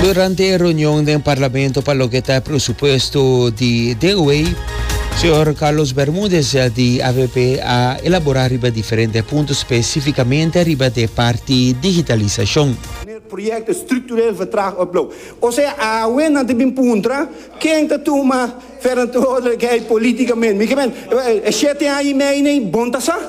Durante e reunion den Parlamento pa loke ta e presupuesto di den wey, señor Carlos Bermudez di avp a elabora riba diferente punto, specificamente riba de parti digitalisacion. Wanneer projecten structureel vertraagd of blok. O sea, awe nan ta bin puntra ken ta tuma verantwoordelijkheid politicamente. Mi ke men, e shete aña y mei nei, bon ta sa?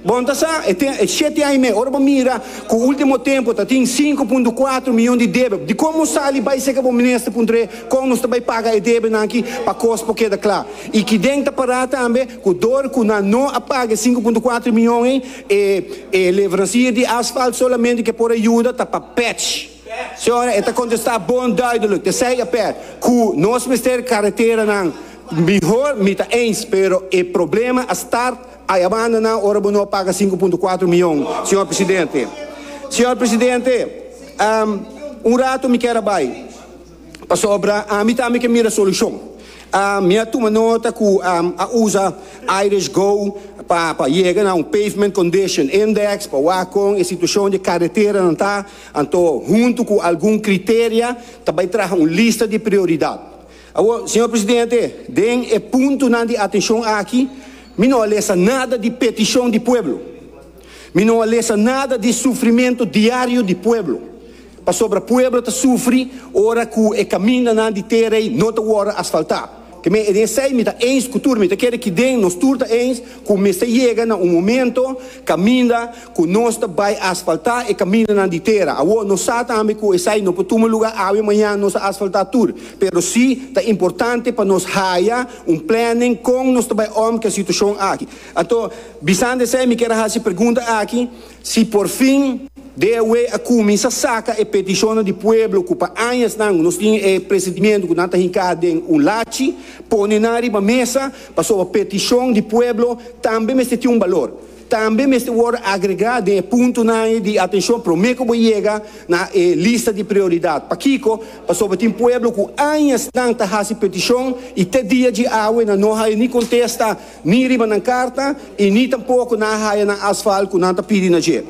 Bon ta sa, e ten e shete aña i mei. Ora bo mira ku ultimo tempu ta tin sinku punto kuater mion di debe, dikon bo sali bai seke bo mester puntre kon nos ta bai paga e debenan aki pa kos por keda kla? I ki den ta pará tambe ku dor ku nan no a paga e sinku punto kuater mion ei, e e levransier di asfalt solamente ke por a yuda ta pa pèch. Señora, e ta kontestá bon duidelijk, tezij a pèr, ku nos mester kareteranan mihor, mi ta eens, pero e problema a start Ai a banda nan ora bo no paga sinku punto kuater mion, señor presidente. Señor presidente, un rato mi kier a bai pasobra ami tambe ke mira solushon. Mi a tuma nota ku a usa Irish Go pa pa yega na un pavement condition index pa wak kon e situashon di e kareteranan ta, anto huntu ku algun kriteria ta bai traha un lista di prioridat. Awor, Señor Presidente, den e puntonan di atencion aki mi no a lesa nada di peticion di pueblo, mi no a lesa nada di sufrimento diario di pueblo, pasobra pueblo ta sufri ora cu e camindanan di T-Rey no ta wordo asfalta. Te me den esey mi ta eens cu tur, mi ta kere ki'den nos tur ta eens cu mester yega na un momento caminda, Ku nos ta bai asfaltá e kamindanan di tera. Awor no sa tambe ku esei no por tuma lugá awe mañan nos a asfaltá tur. Pero sí ta importante pa nos haya un planning kon nos ta bai òm ku e situashon aki. Anto bisando esei mi kier a hasi e pregunta aki, si porfin DAW a kuminsá saka e petishonnan di pueblo ku pa añasnan nos tin e presentimentu ku nan ta hinká den un lachi, pone nan riba mesa, pasobra petishon di pueblo tambe mester tin un balor. Tambe mester worde agregá den e puntonan ei di atenshon promé ku bo yega na e lista di prioridat. Pakiko? Pasobra tin pueblo ku añasnan ta hasi petishon i te dia dje awe nan no haya ni kontesta ni riba nan karta i ni tampoko nan a haya nan asfalt ku nan ta pidi na dje.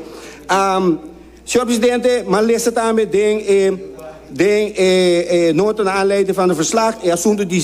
Señor Presidente, m'a lesa tambe den e den e e nota na aanleiding van de verslag e asunto di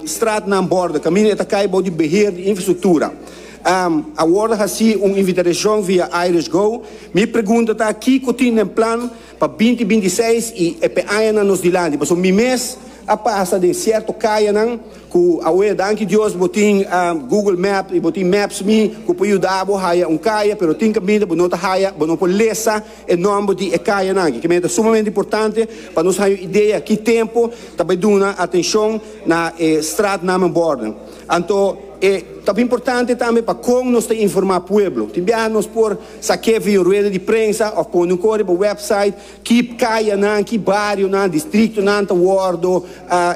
straatnaam borden, camino e ta cay bou di beheer di infrastructura. A wordo haci un invitadashon via Irish Go. Mi pregunta ta kico tin den plan pa binti binti seis y e pe añanan nos dilanti. Pasobra mi mes a pasa den cierto cayanan. Ku awe, danki Dios, bo tin Google Map i bo tin Maps.me ku por yuda bo haya un kaya, pero tin kaminda bo no ta haya, bo no por lesa e nòmber di e kayanan aki. Kimedia ta sumamente importante pa nos haña un idea ki tempu ta bai duna atenshon na e straatnamenbòrden. Anto e ta importante tambe pa kon nos ta informá pueblo. Tin biaha nos por sa keffi un rueda di prensa òf pone un kore pa wèpsait. Ki kayanan, ki barionan, distriktonan ta wòrdu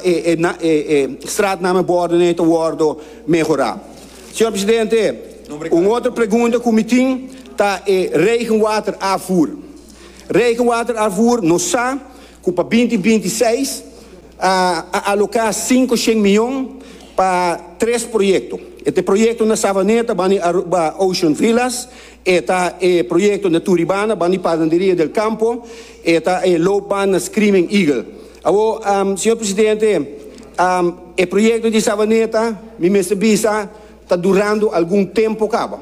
e stratnamen bòrdu n'ei ta wòrdu mehorá? Señor Presidente, un otro pregunta ku mi tin ta e regenwaterafvoer. Regenwaterafvoer nos sa ku pa binti binti seis a aloká sinku shen mion pa tres proyekto. E te proyektonan Savaneta, Bani Aruba, Ocean Villas E ta e proyekto Naturibana, Banda di Padanderia del Campo, e ta e loopbaan na Screaming Eagle. Awor, Señor Presidente, e proyekto di Savaneta, mi mester bisa, ta durando algun tempo caba.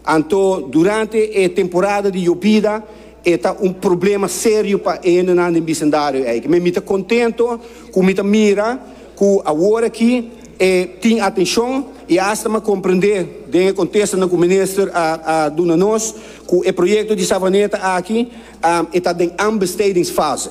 Anto, durante e temporada di yobida, E ta un problema serio pa endenan den bisendario eiki. Mi ta contento cu mi ta mira cu awor aki e tin atencion y hasta mi a comprende den e contestonan cu Minister a a duna nos cu e proyecto di Savaneta aki e ta den aanbestedingsfase.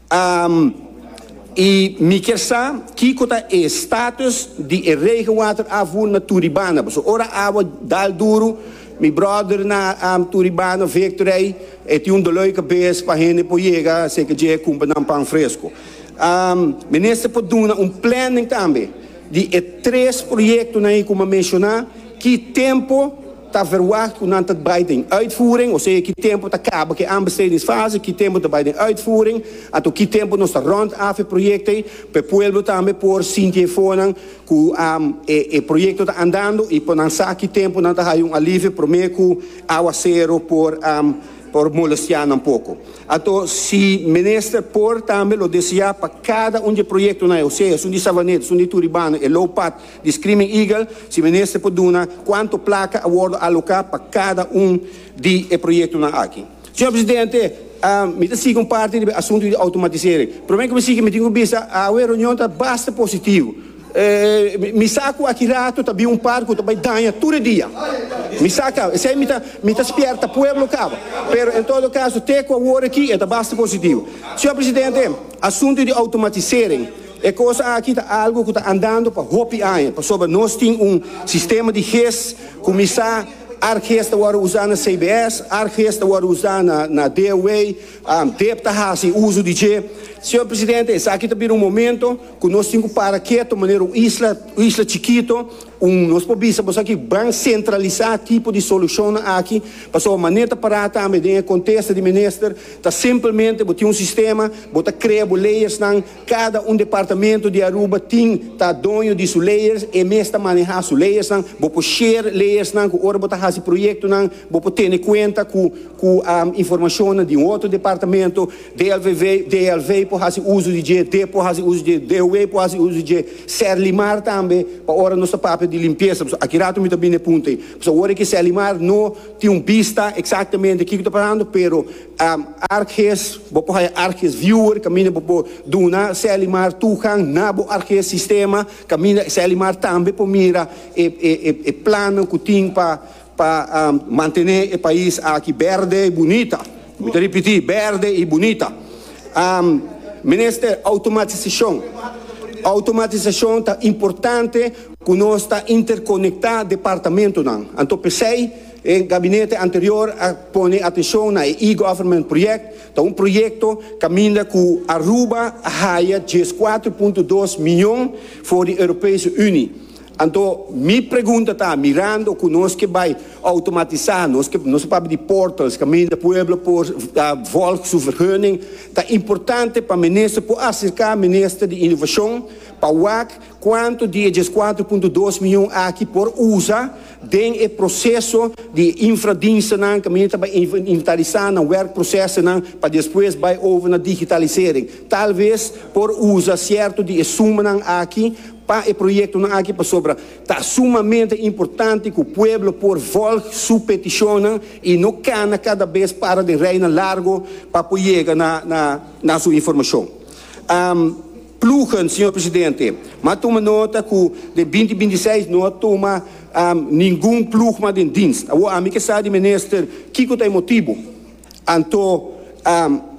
Am, I mi kier sa kiko ta e status di e regenwater afu na Turibana. Paso ora awa dal duru, mi brother na Turibana, Victor ei, e tin un dolor di cabes pa hende por yega cerca dje e cumpra nan pan fresco. Am, Minister por duna un planning tambe di e tres proyectonan ei cu mi a menciona, ki tempo, Ta verwagt ku nan ta bai den uitvoering, osea ki tempu ta kaba ke aanbestedingsfase, ki tempu ta bai den uitvoering, anto ki tempu nos ta rond af e proyektoe, pa e pueblo tambe por sinti e fonan ku e proyekto ta andando i por nan sa ki tempu nan ta haña un alivio promé ku aguasero por molestiá nan poko. Anto si Minister por tambe lo deseá pa kada un di e proyektonan, osea esun di Savaneta, esun di Turibano, e Low Path, Di Screaming Eagle si minister por duna cuanto placa a wordo aloca pa cada un di e proyectonan aki. Señor Presidente, mi ta sigui un parti riba e asunto di automatisering. Prome cu mi sigui mi tin cu bisa awe e reunion ta basta positivo. Mi sa cu aki rato ta bin un parti cu ta bay daña tur e dia. Mi sa caba. Esey mi ta mi ta spierta pueblo caba. Pero en todo caso te cu a worde aki e ta basta positivo. Señor Presidente, asunto di automatisering. E kos aki ta algu ku ta andando pa hopi aña, pasobra nos tin un sistema di ges kuminsá, arges ta wòrdu usá na CBS, arges ta wòrdu usá na DOA, dep ta hasi uso di dje. Señor Presidente, esaki ta bira un momento ku nos tin ku para keto manera un isla, un isla chikito, un, nos por bisa boso aki, ban sentralisá tipo di solushonnan aki, pasobra manera ta pará tambe den e kontesta di Minister ta simplemente bo tin un sistema, bo ta krea bo leyersnan, Cada un departamento di Aruba tin ta doño di su leyes, e mes ta maneha su leyesnan. Bo por share leyesnan cu ora bo ta haci proyectonan, bo por tene cuenta cu cu informacionnan di un otro departamento. DLVV, DLV por haci uzo di dje, dep por haci uzo di dje, DOW por haci uzo di dje, Serlimar tambe pa ora nos ta papia di limpieza, pasobra aki rato mi ta bini na e punto ey. Pasobra ora ki Serlimar no tin un bista exactamente kico ta pasando, pero. Arghes, bo por haya Arghes viewer caminda bo por duna Selimar tugan na bo Arghes sistema caminda Selimar tambe por mira e plannan cu tin pa pa mantene e pais aki berde y bunita. Mi ta ripiti, berde y bunita. Minister, automatisacion, automatisacion ta importante cu nos ta interconecta departamentonan, anto p'esey, E gabinete anterior a pone atenshon na e e-government project, ta un proyekto kaminda ku Aruba a haya djes kuater punto dos miyon for di Europese Uni. Anto mi pregunta ta, mirando ku nos ke bai outomatisá, nos ke nos a papia di portals kaminda pueblo por volg su vergunning, ta importante pa minister por aserká minister di Innovashon pa wak kuantu di e djes kuater punto dos miyon aki por usa Den e proseso di e infradienstenan caminda ta bay inventarisá nan werkprocesonan pa despues bay over na digitalisering. Tal vez por uza cierto di e sumanan aki pa e proyectonan aki pasobra ta sumamente importante cu pueblo por volg su peticionnan y no cana cada bes para den rijnan largo pa por yega na su informacion. Ploegen, Señor Presidente, m'a tuma nota cu den binti binti i seis no a tuma ningun ploegman den dienst. Awo ami ke sa di Minister kico ta e motibo. Anto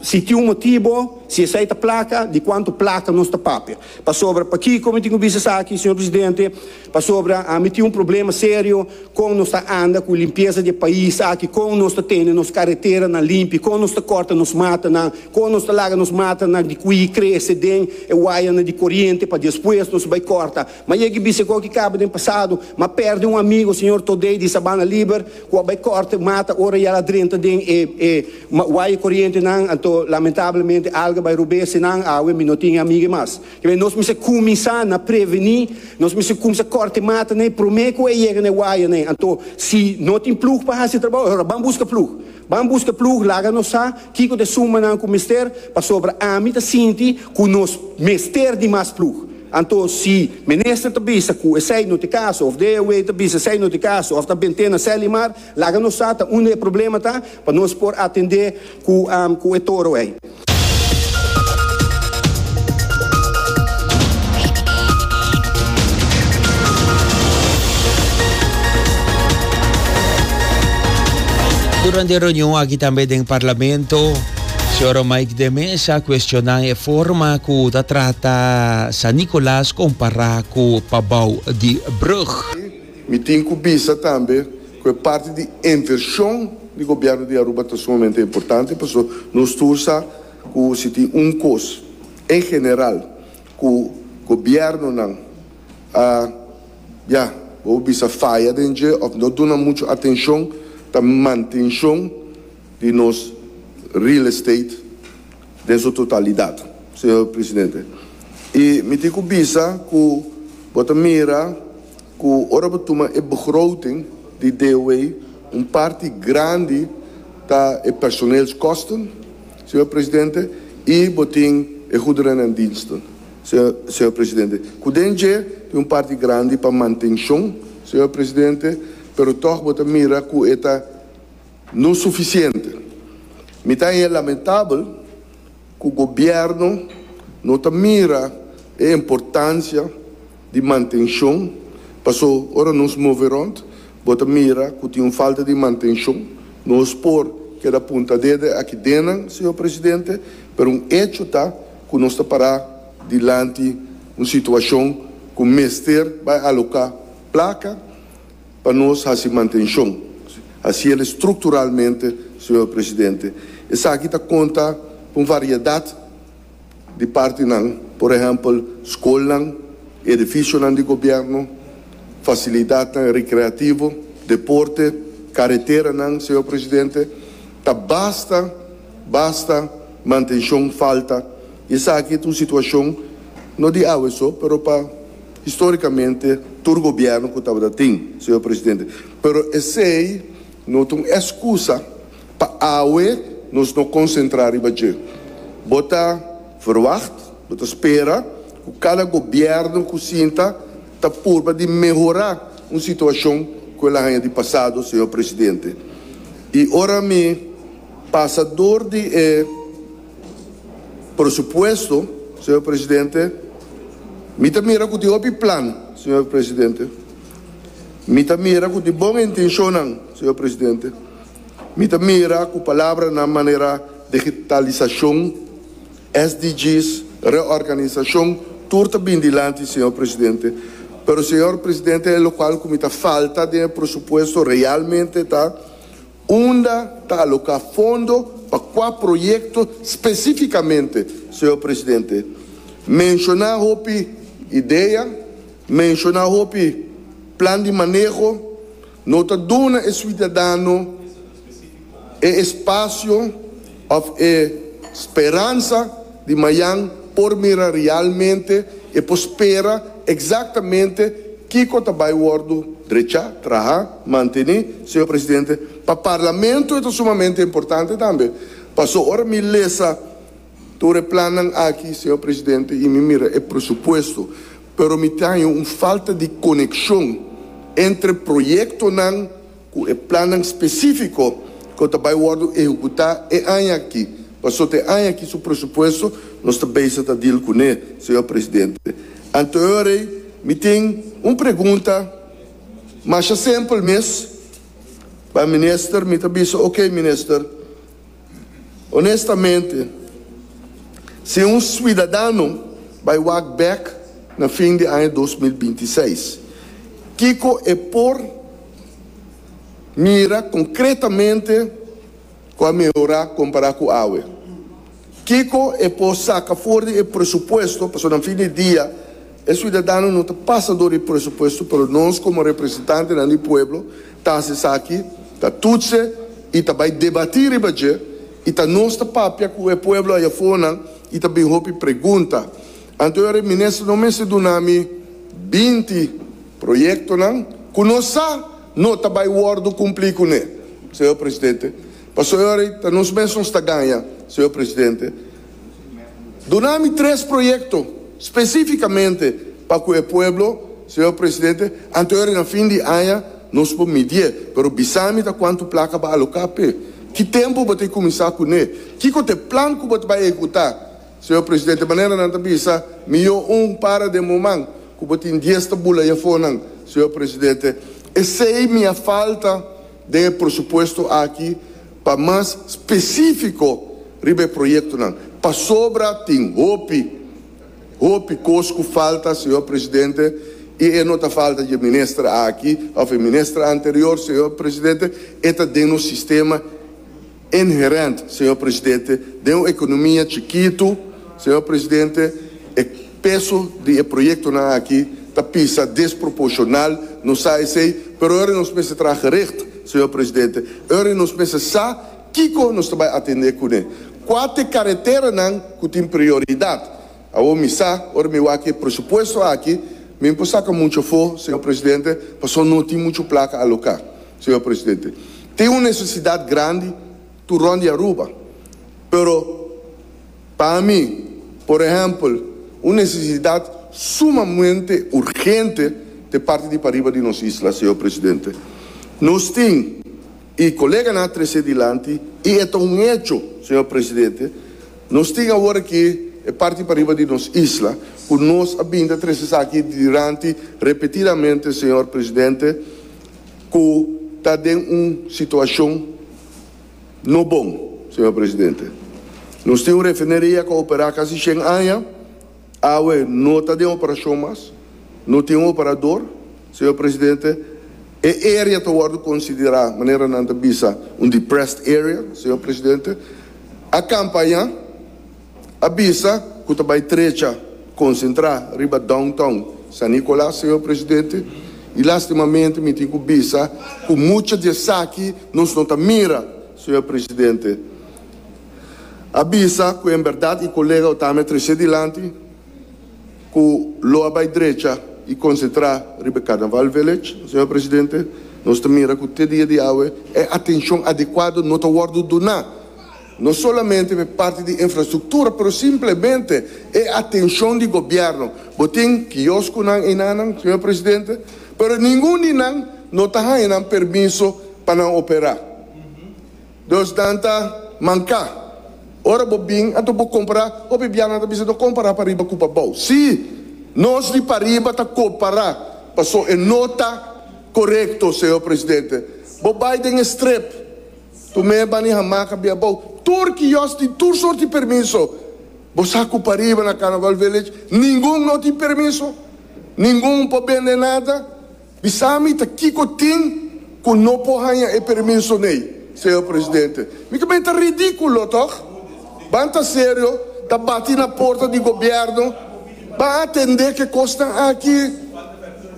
si tin un motibo, si esai ta placa, di cuanto placa nos ta papia? Pasobra pakico mi tin cu bisa esaki, Señor Presidente, Pasobra ami tin un problema serio kon nos ta anda ku limpiesa di e pais aki, kon nos ta tene nos kareteranan limpi, kon nos ta kòrta nos matanan, kon nos ta laga nos matanan di kui krese den e wayanan di koriente pa despues nos bai kòrta. M'a yega i bisa ku oki kaba den pasado m'a pèrdè un amigo, señor Todei di Sabana Liber, ku a bai kòrta e mata ora i al a drenta den e e waya korientenan, anto lamentablemente alga bai rob'é, asina awe mi no tin e amigu'é mas. Kibe nos mester kuminsá na prevení, nos mester kuminsá kòrte matanan promé ku e yega na e wayanan. Anto, si no tin plug pa hasi e trabou, ora ban buska plug. Ban buska plug, laga nos sa kiko ta e sumbanan ku mester, pasobra ami ta sinti ku nos mester di mas plug. Anto, si minister ta bisa ku esei no ta e kaso, òf DAW ta bisa esei no ta e kaso, òf ta bent'é na Sèlimar, laga nos sa ta unda e problema ta, pa nos por atend'é ku e toro ei. Durante e reunion aki tambe den Parlamento, señor Mike de Mesa cuestionan e forma cu ta trata San Nicolas compara cu Pabao di Brug. Mi tin cu bisa tambe Cu e parti di inversion di Gobierno di Aruba ta sumamente importante pasobra nos tur sa cu si tin un cos en general cu Gobiernonan a, ya, bobo bisa faya den dje of no duna mucho atencion ta mantencion di nos real estate den su totalidad, Señor Presidente. Y mi tin cu bisa cu bo ta mira. Ku ora bo tuma e begroting di DOW, un parti grandi ta e personeelskosten, señor presidente, i bo tin e goederen en diensten, señor presidente, ku den dje tin un parti grandi pa mantenshon, señor presidente, pero tòg bo ta mira ku e ta no sufisiente. Mi ta haña lamentabel. Ku gobièrnu no ta mira e importansia di mantenshon, paso ora nos move rònt bo ta mira ku tin un falta di mantenshon. Nos por keda punta dede aki dennan, Señor Presidente, pero un echo ta ku nos ta pará dilanti un situashon ku mester bai aloká plaka, Pa nos hasi mantenshon, hasi el strukturalmente, Señor Presidente, esaki ta konta ku un variedat di partinan, por ehèmpel, skolnan, edifisionan di gobièrnu, fasilidatnan rekreativo, deporte, kareteranan, Señor Presidente. Ta basta, basta mantenshon falta i esaki ta un situashon no di awe so, pero pa. Historicamente tur gobierno cu tabata tin, Señor Presidente, pero esey no ta un excusa pa awe nos no concentra riba dje. Bo ta verwacht, bo ta spera cu cada gobierno cu sinta ta purba di mehora un situacion cu el a haya di pasado, Señor Presidente. Y ora mi pasa door di e. Por supuesto, señor presidente, mi ta mira cu tin hopi plan, señor presidente. Mi ta mira cu tin bon intencionnan, señor presidente. Mi ta mira cu palabranan manera digitalisacion, SDGs, reorganisacion, tur ta bin dilanti, señor presidente. Pero, señor presidente, e locual cu mi ta falta den e presupuesto realmente ta, Unda ta aloká fondo pa kua proyekto spesífikamente, señor presidente? Menshoná hopi idea, menshoná hopi plan di maneho, no ta duna e suidadano e espasio. Of e speransa di mayan por mira realmente e por spera exactamente kico ta bay wordo drecha, traha, manteni, Señor Presidente. Pa Parlamento e ta sumamente importante tambe. Paso ora mi lesa tur e plannan aki, Señor Presidente, y mi mira e presupuesto, pero mi taño un falta di conexion entre proyectonan, Cu e plannan specifico cu ta bay wordo ehecuta e aña aki. Pasobra e aña aki su presupuesto nos ta beysa ta deal cu ne, Señor Presidente. Anteorrey mi tin un pregunta masha simpel mes pa Minister. Mi ta bisa, ok Minister, Onestamente, si un suidadano bai wak bèk na fin di aña dos mil binti i seis, kiko e por mira konkretamente ku a mehorá kompará ku awe? Kiko e por saka for di e presupuesto, pasobra na fin di dia, E siudadano no ta pasa dor e presupuesto pero nos como representantenan di pueblo ta haci esaki, ta tutse y ta bay debati riba dje y ta nos ta papia cu e pueblo aya afornan y ta bin hopi pregunta. Anto ora e minister no mester duna mi binti proyectonan cu nos sa no ta bay wordo cumpli cu ne, Señor Presidente. Pasobra e ora ta nos mes nos ta gaña, Señor Presidente. Duna mi tres proyekto spesifikamente pa ku e pueblo, señor presidente, anto yori na fin di aña nos por midié, pero bisa mi ta kuantu plaka bo a aloká p'e, ki tempu bo ta e kuminsá kuné, kiko ta e plan ku bo ta bai ehekutá, señor presidente, manera nan ta bisa mi yo un para den moman ku bo tin dies tabula y'afónan, señor presidente, esei mi a falta. den e presupuesto aki pa mas specifico riba e proyectonan pasobra tin hopi hopi cos cu falta Señor Presidente y e no ta falta dje Minister aki of e Minister anterior Señor Presidente e ta den nos sistema Inherent, señor presidente, den un economia chikitu, señor presidente, e peso di e proyectonan aki ta pisa desproporcional, nos sa esey, pero ahora nos mester traha gericht, señor presidente, ahora nos mester sa kico nos ta bay atende cun'e. Cua t'e careteranan cu tin prioridad? Awor mi sa, ora mi wak e presupuesto aki, mi por saca mucho for, señor presidente, pasobra no tin mucho placa aloca. Señor presidente, tin un necesidad grandi tur rond di Aruba, pero pa mi, por ehempel, un necesidad sumamente urgente te parti di pariba di nos isla, señor presidente. Nos tin E koleganan a tres'é dilanti i e ta un hecho, señor presidente. Nos tin awor aki e parti pariba di nos isla ku nos a bini ta tres esaki dilanti repetidamente, señor presidente, ku ta den un situashon no bon, señor presidente. Nos tin un refineria ku a operá kasi shen aña, awe no ta den operashon mas, no tin un operador, señor presidente. E area ta wòrdu konsiderá manera nan ta bisa un depressed area, señor presidente. A kampaña a bisa ku ta bai trecha konsentrá riba downtown San Nicolas, señor presidente, i lastimamente mi tin ku bisa ku mucha di esaki nos no ta mira, señor presidente. A bisa ku en bèrdat i kolega Otame a trese dilanti. cu lo a bay drecha y concentra riba e Carnaval Village, Señor Presidente, nos ta mira cu te dia di awe e atencion adecuado no ta wordo duna, no solamente pa e parti di infrastructura, pero simplemente e atencion di Gobierno. Bo tin kiosconan einanan, Señor Presidente, pero ningun di nan no ta haya nan permiso pa nan opera. Dos nan ta manka. Ora bo bin anto bo kompará, hopi bianan ta bisa, No kompará pariba ku pabou. Sí, nos di pariba ta kompará, paso e no ta korekto, Señor Presidente. Bo bai den e strip, tu mes bani hamaca bia abou, tur kiosk tin tur sort di permiso. Bo sa ku pariba na Carnaval Village ningun no tin permiso, ningun por bende nada. Bisa mi ta kiko tin ku no por haña e permiso n'ey, Señor Presidente. Mi ta mester ridíkulo, tòg? Ban ta serio, ta bati na porta di gobièrnu, ban atendé ku e kosnan aki.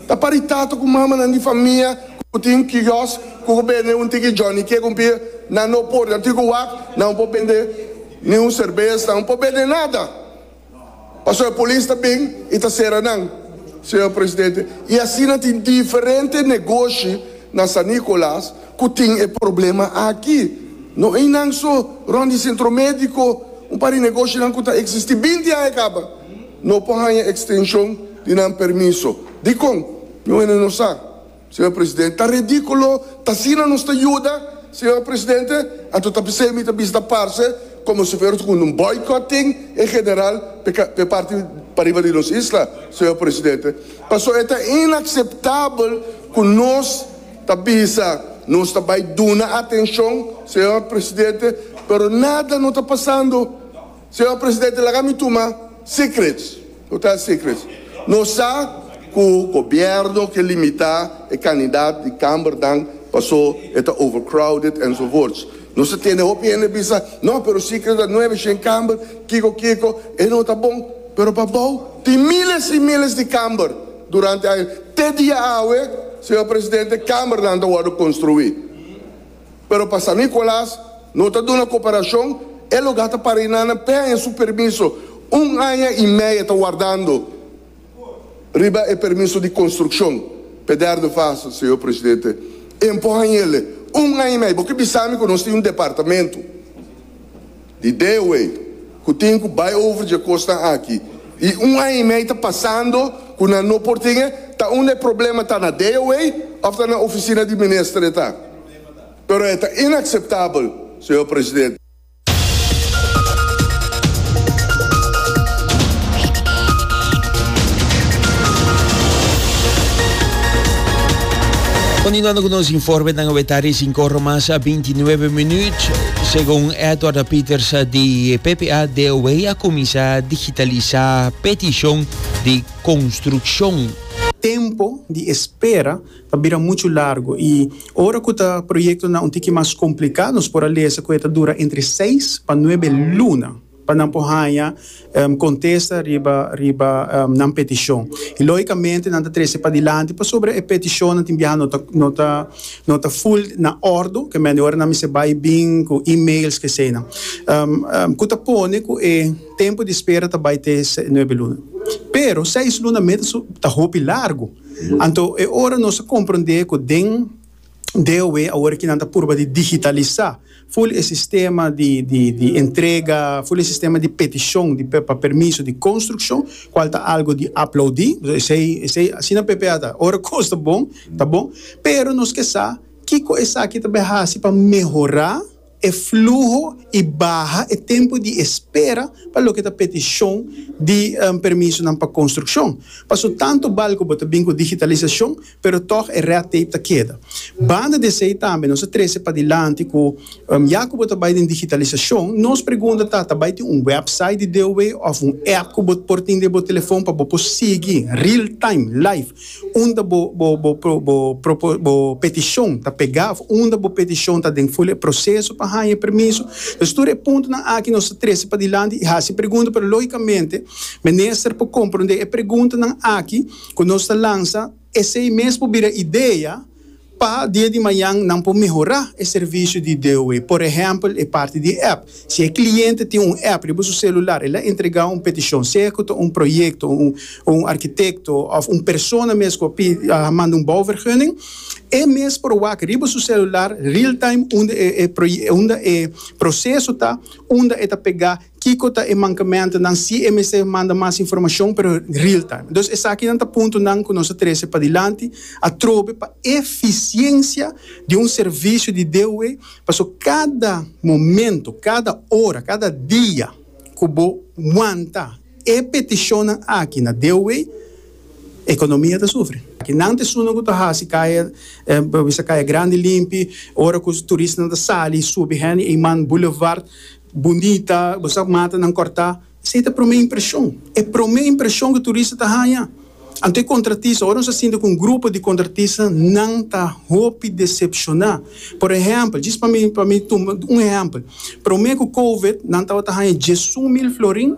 Ta pari tata ku mamanan di famia ku tin kiosk ku por bende un tiki Johnny Cake, un pia. Nan no por, nan tin ku wak, nan no por bende ni un serbes, nan no por bende nada. Paso e polis ta bin y ta cera nan, Señor Presidente, y asina tin diferente negoshi na San Nicolas cu tin e problema aki. No ey nan so, rond di Centro Medico, un par di negoshinan cu ta existi binti aña caba, no por haya extension di nan permiso. Dicon? Mi wende no sa. Señor Presidente, ta ridiculo, ta asina nos ta yuda, Señor Presidente, anto ta p'esei mi ta bisita parce como si fuera cu un boycott tin en general p'e parti p'ariba di nos isla, Señor Presidente. Paso e ta inaceptabel cu nos ta bisa nos ta bay duna atencion, Señor Presidente, pero nada no ta pasando. Señor Presidente, laga mi tuma secrets, total secrets. Nos sa cu gobierno ke limita e candidat di Cambernan paso e ta overcrowded enzovoorts. Nos ta tene hopi hende bisa, no, pero secrets ta nueve shen Camber, kiko kiko. E no ta bon. Pero pa bao tin miles y miles di Camber durante aña. Te dia awe, Señor Presidente, Cambernan ta wordo construi. Pero pa San Nicolas no ta duna cooperacion, e lo gasta para y nana pe aña su permiso, un aña y media ta wardando riba e permiso di construccion p'e derde fase, Señor Presidente, en por hañele un aña y media, bo ke bisa mi cu nos tin un departamento. Di dewe ku tin ku bai over dje kosnan aki i un aña i mei ta pasando ku nan no por tin e, ta unda e problema ta na dewe òf ta na ofisina di minister e ta. Pero e ta inakseptabel, señor presidente. Kontinuando ku nos informenan, ora ta recincor mas a binti nuebe minuut. Segun Edward Pieters di PPA DOW a cuminsa digitalisa peticion di construccion. Tempo di espera ta bira muchu largo y ora cu ta proyectonan un tiki mas complica nos por a lesa cu e ta dura entre seis pa nuebe luna. pa nan por haña kontesta riba riba nan petishon i lógikamente nan ta trese padilanti pasobra e petishonnan tin biaha no ta no ta no ta ful na òrdu ke mende ora nan mester bai i bin ku emails ke eseinan ku ta pone ku e tempu di spera ta bai te nuebe luna pero seis luna mes ta hopi largu anto e ora nos a komprondé ku den DOW, awor ki nan ta purba di digitalisa ful e sistema di di di entrega, ful e sistema di petishon di pa permiso di konstrukshon, kual ta algo di aplaudi, esei esei asina p'e p'e a ta, ora kos ta bon ta bon, pero nos ke sa kiko esaki ta bai hasi pa mehora. E fluho y baha e tempo di espera pa loke ta peticion di permisonan pa construccion. Paso tanto bal cu bo ta bin cu digitalisacion pero toch e red tape ta keda. Banda di esey tambe nos a trece padilanti cu ya cu bo ta bay den digitalisacion nos pregunta ta ta bay tin un website di DOW of un app cu bo por tin den bo telefon pa bo por sigui real time, live, Unda bo bo petishon ta pegá òf unda bo petishon ta den fula e proseso pa haña e permiso. Pues tur e puntonan aki nos ta trese padilanti i hasi pregunta pero lógikamente minister por komprondé e preguntanan aki ku nos ta lansa esei mes por bira idea, Pa dia di mañan nan por mehorá e servisio di DOE. Por ehèmpel, e parti di app. Si e kliente tin un app riba su selular, el a entregá un petishon, sea ku ta un proyekto, o un arkitekto, òf un persona mes ku a manda un bouvergunning. E mes por wak riba su selular, real-time, unda e proseso ta, unda e ta pegá. Kiko ta e mankementunan si e mester manda mas informashon pero real time? Dus esakinan ta puntonan ku nos ta trese padilanti atrobe pa efisiensia di un servisio di DOW paso kada momento, kada ora, kada dia ku bo wanta e petishonnan aki na DOW ekonomia ta sufri. Nan ta esunnan ku ta hasi kaya bisa Kaya Grandi limpi, ora ku turistanan ta sali subi hende Eiman Boulevard. Bundita, bo sa mata nan kòrtá. Esei ta promé impreshon. E promé impreshon ku turista ta haña. Anto e kontratista, ora nos a sinti ku un grupo di kontratista nan ta hopi desepshoná. Por ehèmpel, djis pa mi pa mi tuma un ehèmpel. Promé ku kowid nan tabata haña diesun mil florin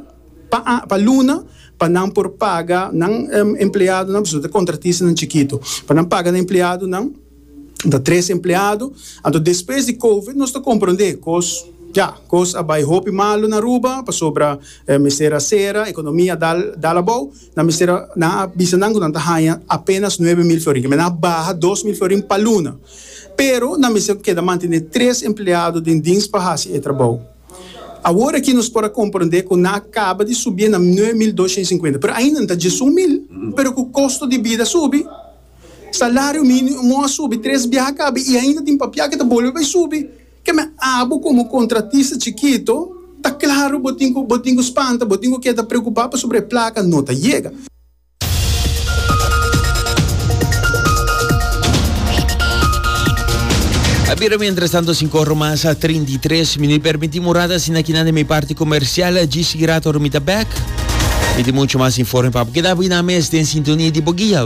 pa a pa luna pa nan por paga nan empleadonan, pasobra ta kontratistanan chikitu, pa nan paga nan empleadonan. Nan ta tres empleado, anto despues di covid nos ta comprende cos ya cos a bay hopi malo na Aruba pasobra mester a cera economia a dal dal abao nan mester a nan a bisa nan cu nan ta haya apenas nuebe mil florin kimen nan a baha dos mil florin pa luna pero nan mester keda mantene tres empleado den dins pa haci e trabao awor aki nos por a comprende cu nan a caba di subie na nuebe mil dos shenda y cincuenta pero ainda nan ta djesun mil pero cu costo di bida subi. Salario minimo a subi tres biaha kabe i ainda tin papia ke ta bolbe bai subi. Keme abo komo kontratista chikito ta klaru bo tin ku bo tin ku spanta, bo tin ku keda preokupá pasobra e plaka no ta yega. A bira mientras tanto sin corro mas a trinta y tres minuut permiti murada asina kinan de mi parti comercial GC Grato ora mi ta back. Mi tin mucho mas informe pap keda bo y nan mes den sintonia di bo guia.